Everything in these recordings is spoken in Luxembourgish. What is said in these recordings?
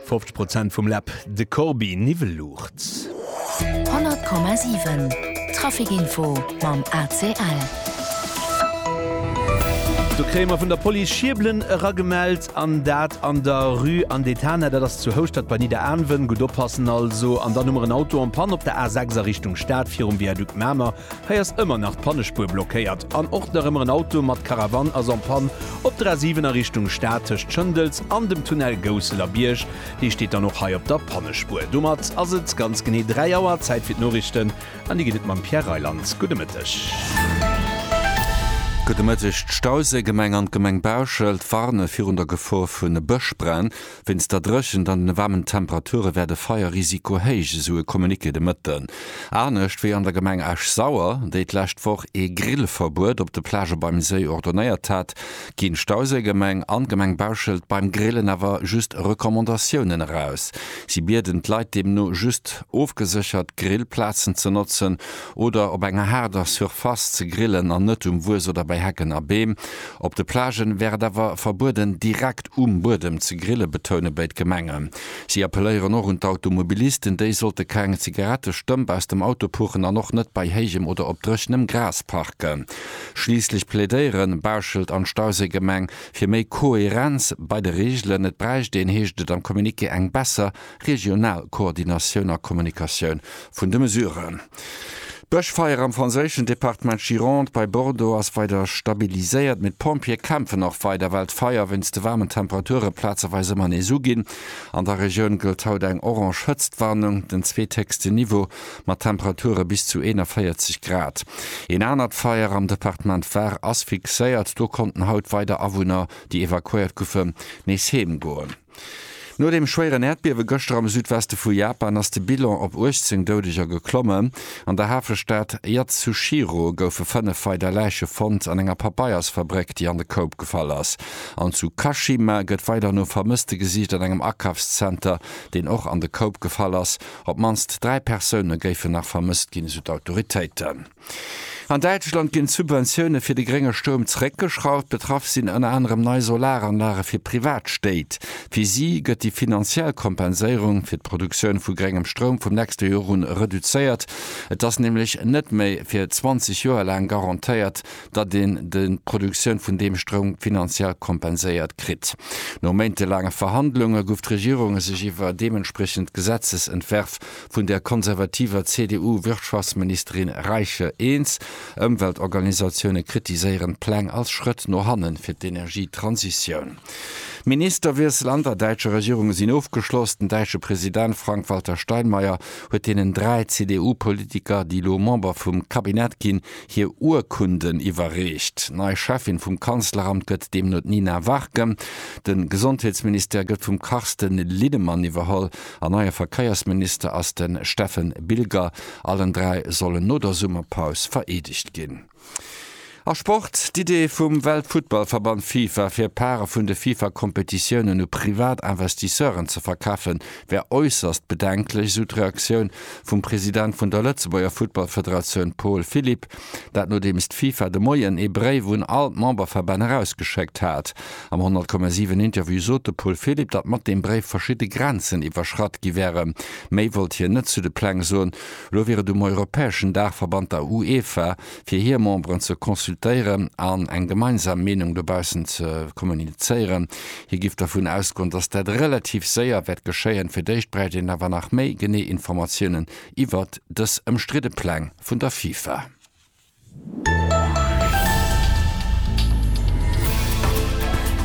Fofzeg Prozent vum Läb, de Corbi Niwweluucht. 100,7 Trafic Info mam ACL. Do kréie mer vun der Police Schiebelen eragemellt an dat an der Rue Anne d'Etana, dat ass zu Houschtert bei Nidderaanwen. Gutt oppassen also. An dann hu mer en Auto en panne op der A6 a Richtung Stad virum Viaduc Mamer. Hei ass ëmmer nach d'Pannespuer blockéiert an och nach ëmmer en Auto mat Karavan ass en panne. Op der A7 a Richtung Stad tëscht Schëndels an dem Tunnel Gousseler Bierg, dee steet dann och hei op der Pannespuer. Domat ass et ganz genee 3 Auer, Zäit fir d'Noriichten an déi gëtt et mam Pierre Reyland. Gudde Mëtteg. Gudde Mëtteg. D'Stauséigemeng an d'Gemeng Bauschelt warne virun der Gefor vu Bëschbränn. Wéinst der Dréchent an den waarmen Temperature wär de Feierrisiko héich, esou e Communiqué de Mëtten. Anescht wéi an der Gemeng Esch-Sauer, déi d'lescht Woch ee Grillverbuet op de Plagë beim Séi ordonéiert hat, ginn d'Stauséigemeng an d'Gemeng Bauschelt beim Grillen awer just Recommandatiounen eraus. Si bieden d'Leit deemno just, ofgeséchert Grillplazen ze notzen oder op enger haarder Surface ze grillen an net um Wues oder bei Hecken a Beem. Op de Plagen wär et awer verbueden, direkt um Buedem ze grillen, betoune béid Gemengen. Si appelléieren och un d'Automobilisten, déi sollte keng Zigarette stëmp aus dem Auto puchen an och net bei héijem oder op dréchenem Gras parken. Schliisslech plädéieren Bauschelt an Stauséigemeng fir méi Koherenz bei de Reegelen. Et bräicht een, heescht et am Communiqué, eng besser Regional Koordinatioun a Kommunikatioun vun de Mesuren. D'Bëschfeier am franséischen Departement Gironde bei Bordeaux ass weider stabiliséiert, mee d'Pompjeeë kämpfen och weider, well d'Feier wéinst de waarmen Temperature plazeweis ëmmer nees uginn. An der Regioun gëllt haut eng orange Hëtztwarnung, den zweethéchsten Niveau, mat Temperature bis zu 41 Grad. Een anert Feier am Departement Var ass fixéiert. Do konnten haut weider Awunner, déi evakuéiert goufen, nees heemgoen. No dem schwéieren Äerdbiewe gëschter am Südweste vu Japan ass de Bilan op 18 Doudeger geklommen. An der Hafestad Yatsushiro goufe fënnef weider Läiche fonnt an enger Papeiersfabréck, déi an de Koup gefall ass. An zu Kashima gëtt weider no Vermësste gesicht an engem Akafszenter, deen och an de Koup gefall ass. Op d'mannst dräi Persoune géifen nach vermësst ginn, esou d'Autoritéiten. An Däitschland ginn d'Subventioune fir de grénge Stroum zeréckgeschrauft. Betraff sinn ënner anerem nei Solaranlage fir privat Stéit. Fir si gëtt déi finanziell Kompenséierung fir d'Produktioun vu gréngem Stroum vum nächste Joer un reduzéiert. Et ass nämlech net méi fir 20 Joer laang garantéiert, datt een d'Produktioun vun deem Stroum finanziell kompenséiert kritt. No méintelaange Verhandlunge gouf d'Regierung sech iwwer deementspriechend Gesetzesentwärf vun der konservativer CDU-Wirtschaftsministerin Reiche eens. Ëmweltorganisatioune kritiséieren d'Pläng als Schrëtt no hanne fir d'Energietransitioun. D'Ministerwiessel an der däitscher Regierung sinn ofgeschloss. Den däitsche President Frank-Walter Steinmeier huet deenen dräi CDU-Politiker, déi elo Member vum Cabinet ginn, hir Urkunden iwwerreecht. Nei Cheffin vum Kanzleramt gëtt deemno d'Nina Warken. De Gesondheetsministère gëtt vum Carsten Linnemann iwwerholl. En neie Verkéiersminister ass de Steffen Bilger. Allen dräi sollen no der Summerpaus vereedegt ginn. A Sport, D'Idee vum Weltfuttballverband Fifa, fir Pare vun de Fifa-Kompetitiounen u privat Investisseuren ze verkafen, wär äusserst bedenklech, esou d'Reaktioun vum President vun der Lëtzebuerger Futtballfederatioun Paul Philipp. Dat nodeems d'Fifa de Moien ee Bréif un all d'Memberverbänn erausgeschéckt hat. Am 100,7 Interview sot de Paul Philipp, datt mat deem Bréif verschidde Grenzen iwwerschratt gi wäre. Méi wollt hien net zu de Pläng soen. Elo wier et um europäeschen Daachverband, der UEFA, fir hir Memberen ze consultéieren an eng gemeinsam Meenung dobaussen ze kommunizéieren. Hie géif dervun ausgoen, datt dat relativ séier wäert geschéien. Fir d'éischt bräicht een awer nach méi genee Informatiounen iwwert dës ëmstridde Pläng vun der FIFA.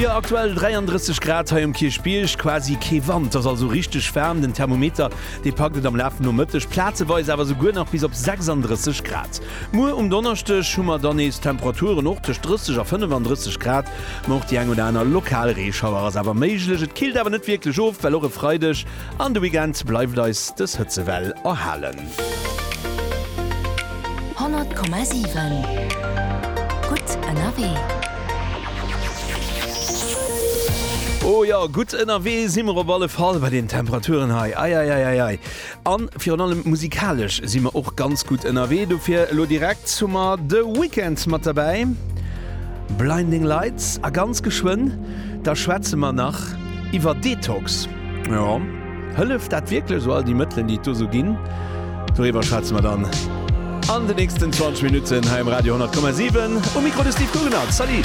Jo, aktuell 33 Grad hei um Kierchbierg, quasi kee Wand. Ass also richteg waarm, den Thermometer dee packt et am Laf vum Nomëtteg plazeweis awer souguer nach bis op 36 Grad. Muer um Donneschdeg hu mer dann nees Temperaturen och tëscht 30 a 35 Grad, ma och déi eng oder aner lokal Reeschauer ass awer méiglech. Et killt awer net wierklech of, well och e Freideg An de Weekend bleift eis dës Hëtzewell erhalen. 100,7 Gutt ënnerwee. Oh jo, gutt ënnerwee si mer op alle Fall bei den Temperaturen hei. Eieieiei. A virun allem musikalesch si mer och ganz gutt ënnerwee. Dofir elo direkt hu mer de Weekend mat derbäi, Blinding Lights a ganz geschwënn da schwätze mer nach iwwer Detox. Jo. Hëlleft dat wierklech esou, all déi Mëttelen, déi et do esou ginn? Doriwwer schwätze mer dann an de nächsten 20 Minutten hei um Radio 10,7. Um Mikro de Steve Guggenert. Salut!